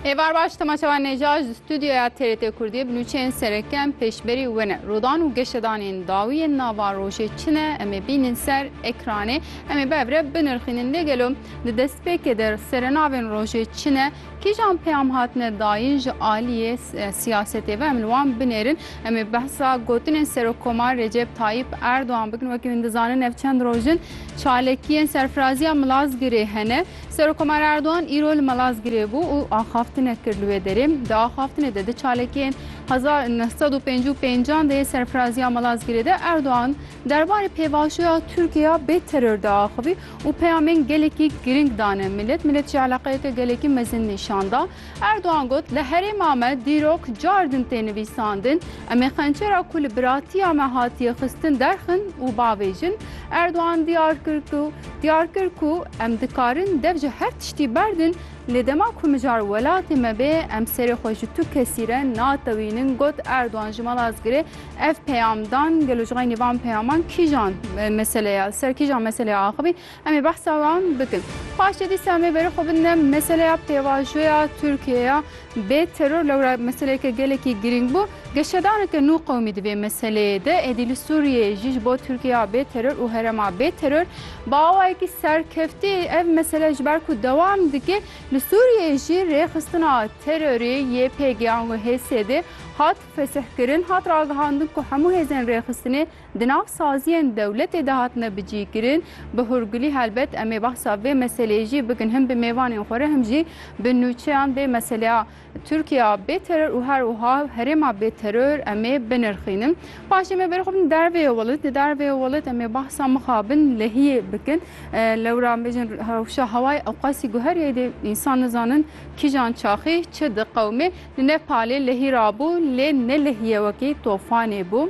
Êvar baş temaşewa nêja ji stûdyoya TRT Kurdiyê bi nûçeyên sereke em pêşberî we ne. Rodan û geşedanên dawî yên nava rojê çi ne em ê bînin ser ekranê. Em ê bi hev re binirxînin lê gelo di destpêkê de serenavên rojê çi ne? Kîjan peyam hatine dayîn ji aliyê siyasetê ve em li wan binêrin. Em ê behsa gotinên Serokkomar Recep Tayyip Erdogan bikin. Wekî hûn dizanin ev çend roj in çalakiyên serfiraziya Milazgirê hene. Serokkomar Erdogan îro li Malazgirê bû û axaftinek kir li wê derê. Di axaftinê de di çalakiyên hezar neh sed û pêncî û pêncan de yê serfiraziya Malazgirê de Erdogan derbarê pêvajoya Tirkiya bê teror de axivî û peyamên gelekî girîng dane milet. Milet jî eleqeyeke gelekî mezin nîşan da. Erdogan got, Li herêma me dîrok car din tê nivîsandin. Em ê qençera ku li biratiya me hatiye xistin derxin û bavêjin. Erdogan diyar kir ku diyar kir ku em dikarin dev ji her tiştî berdin, lê dema ku mijar welatê me bê em serê xwe ji tu kesî re natewînin got Erdogan ji mala Zgirê ev peyam dan. Gelo ji xeynî van peyaman kîjan meseleya li ser kîjan meseleya axivî? Em ê behsa wan bikin. Paşê dîsa em ê berê xwe bidine meseleya pêvajoya Tirkiyeyê ya bê teror. Lewra meseleyeke gelekî girîng bû. Geşedaneke nû qewimî di vê meseleyê de êdî li Sûriyeyê jî ji bo Tirkiyeya bê teror û herema bê teror bi awayekî serkeftî ev mesele ji ber ku dewam dike li Sûriyeyê jî rêxistina terorê YPG an û HSD hat fesihkirin. Hat ragihandin ku hemû hêzên rêxistinê Di nav saziyên dewletê de hatine bicîkirin. Bi hûrgulî helbet em ê behsa vê meseleyê jî bikin him bi mêvanên xwe re him jî bi nûçeyan vê meseleya Tirkiya bê teror û her wiha herêma bê teror em ê binirxînin. Paşê em ê berê xwe bin derveyê welat. Di derveyê welat em ê behsa mixabin lehiyê bikin. Lewra bêjin rewşa hewayê ewqasî guherîyayî dê însan nizanin kîjan çaxî çi diqewimê. Li Nepalê lehî rabû lê ne lehîye wekî tofanê bû.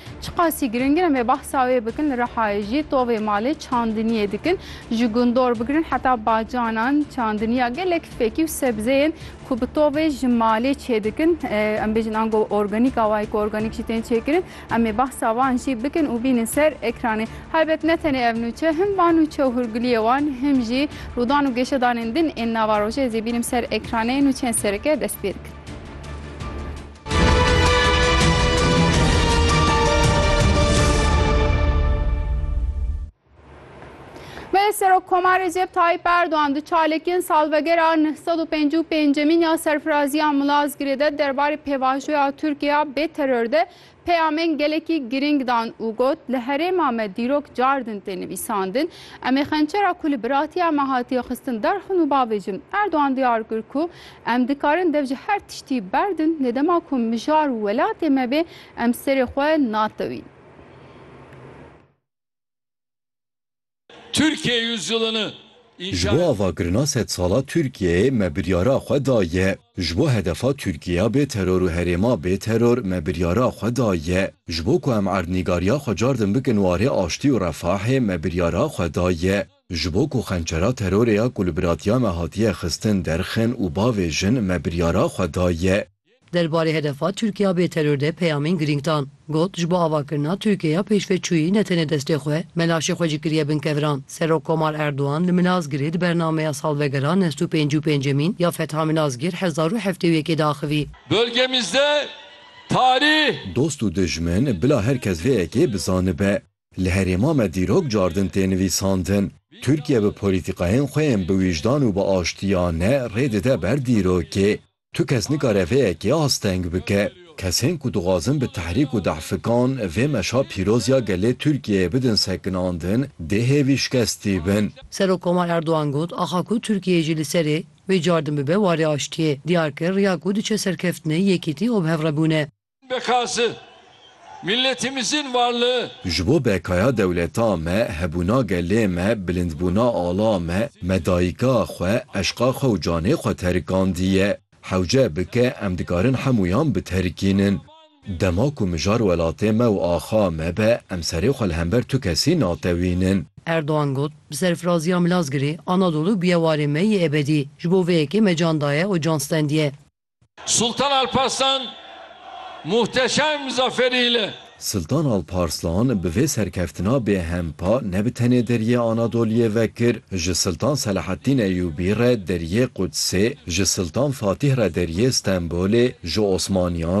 Çiqasî giring in em ê behsa wê bikin li Rihayê jî tovê malê çandiniyê dikin ji gundor bigirin heta bacanan çandiniya gelek fekî û sebzeyên ku bi tovê ji malê çêdikin em bêjin ango organîk a wayî ku organîk jî tên çêkirin em ê behsa wan jî bikin û bînin ser ekranê helbet ne tenê ev nûçe him van nûçe û hûrgiliyê wan him jî rûdan û geşedanên din ên nava rojê ez ê bînim ser ekranê nûçeyên sereke dest pê dikin. Belê Serokkomar Recep Tayyip Erdoğan di çalekên salvegera 955 ya serfiraziya Milazgirê de derbarê pêvajoya Tirkiye bê teror de peyamên gelekî girîng dan û got li herêma me dîrok cardin tê nivîsandin em ê xençera ku li biratiya me hatiye xistin derxin û bavêjin. Erdoğan diyar kir ku Em dikarin dev ji her tiştî berdin lê dema ku mijar û welatê me bê em serê xwe natewîn. Türkiye Yüzyılını Ji bo avakirina sedsala Tirkiyeyê me biryara xwe daye. Ji bo hedefa Tirkiyeya bê teror û herêma bê teror me biryara xwe daye. Ji bo ku em erdnîgariya xwe car din bikin warê aştî û refahê me biryara xwe daye. Ji bo ku xençera terorê ya ku li biratiya me hatiye xistin derxin û bavê jin me biryara xwe daye. Derbarê hedefa Tirkiya bê teror de peyamên girîng dan. Got, Ji bo avakirina Tirkiyeya pêşveçûyî ne tenê destê xwe, melaşê xwe jî kiriye bin kevran. Serok Komar Erdogan li Milazgirê di bernameya salvegera nest û pêncî û pêncemîn ya Fetha Milazgir hezar û heftê û yekê de axivî. Bölgemizde tarih. Dost û dijmin, bila her kes vê yekê bizanibe. Li herêma me dîrok cardin tê nivîsandin. Tirkiye bi polîtîkayên xwe yên bi wijdan û bi aştiya ne rê dide ber dîrokê. Tu kes nikare vê yekê asteng bike. Kesên ku dixwazin bi tehrîk û dehfikan vê meşa pîroz ya gelê Tirkiyeyê bidin sekinandin dê hêvî şikestî bin. Serokkomar Erdogan got, Axa ku Tirkiyeyê jî li serê vê cardin bibe warê aştiyê, diyar kir riya ku diçe serkeftinê yekîtî û bi hev re bûn e. Bekası, milletimizin varlığı. Ji bo bekaya dewleta me, hebûna gelê me, bilindbûna ala me, me dayika xwe, eşqa xwe û canê xwe terikandiye. Hewce bike em dikarin hemûyan biterikînin. Dema ku mijar welatê me û axa me be, em serê xwe li hember tu kesî natewînin. Erdogan got, Bi serfiraziya Milazgirê, Anadolu bûye warê me yê ebedî. Ji bo vê yekê me can daye û can stendiye. Sultan Alparslan muhteşem zaferî li. Sultan Alparslan bi vê serkeftina bêhempa ne bi tenê Deriyê Anadoliyê vekir, ji Sultan Selahaddîn Eyûbî re Deriyê Qudsê, ji Sultan Fatîh re Deriyê Stenbolê, ji Osmaniyan,